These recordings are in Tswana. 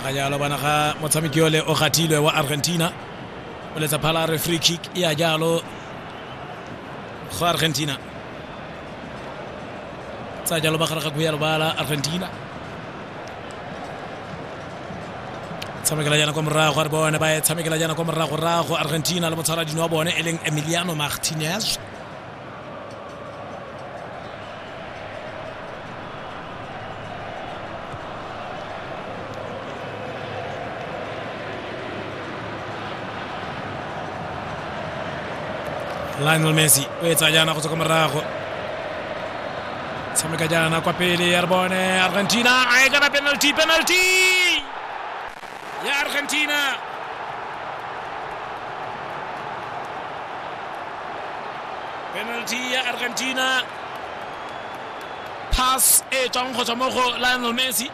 ga jalo bana ga motshameki ole o gathilwe wa argentina o letsa phala re free kick e ya jalo go argentina tsa jalo ba gare ga kuya lobala argentina tshamekela jana kwa morago re bone ba e tshamekela jana kwa morago rago argentina le motshwaradino wa bone e leng emiliano martinez lionel messi o etsa jaana go tswa kwa morago tshameka jaana kwa pele ya re bone argentina a e kana penalty penalty ya Argentina. Penalty ya Argentina. Pass e tswang go tswa mo go Lionel Messi.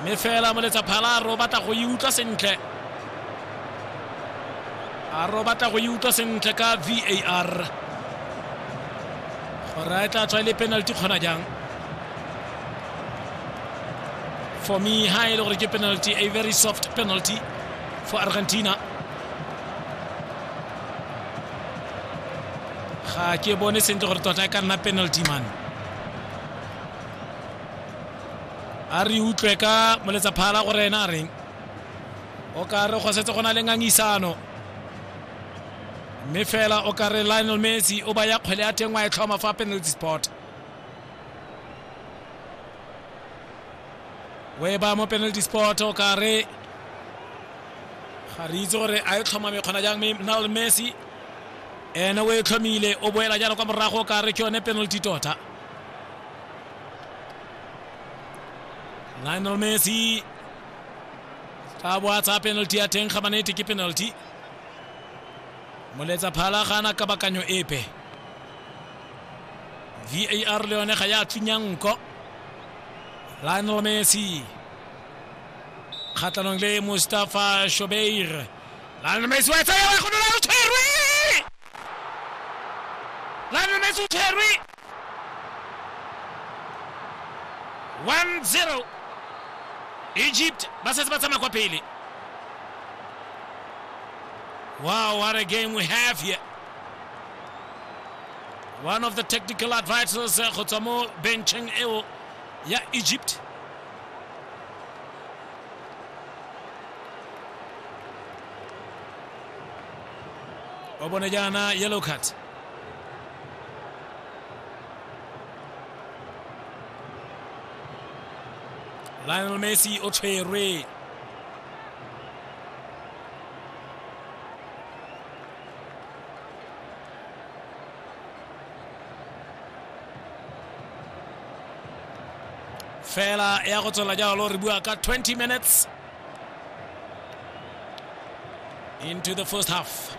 Mme fela moletsa phala ro batla go e utlwa sentle. A ro batla go e utlwa sentle ka VAR. Gore a e tla tswa e le penalty kgona jang. for me ha e le gore ke penalty a very soft penalty for argentina ga ke bone sentle gore tota e ka nna penalty man a re utlwe ka moletsa phala gore ena a reng o ka re go setse go na le ngangisano mme fela o ka re lionel messi o ba ya kgwele ya teng wa e tlhoma fa penalty spot weba mo penalty spot o kare ga re itse gore a e tlhomame kgona jang mme nal messi ene o e tlhomile o boela jalo kwa morago o kare ke yone penalty tota lionel messi tla bo a tsaya penalty ya teng ga manete ke penalty moletsa phala ga ana kabakanyo epe var le yone ga ya thunya nko lionel messi kgatlhanong le mustafa shobeir lionel messi wa tsaya wa gonola o tshwerwe lionel messi o tshwerwe 1-0 egypt ba setse ba tsamaya kwa pele wow what a game we have here one of the technical advisors eh, go tswa mo bencheng eo ya egypt o bone jaana yellow card lionel messi o tshwerwe fela ya go tswela jalo re bua ka 20 minutes into the first half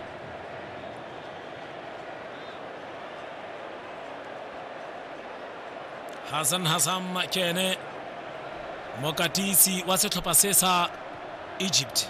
hassan hassan ke ene mokatisi wa setlhopha se sa egypt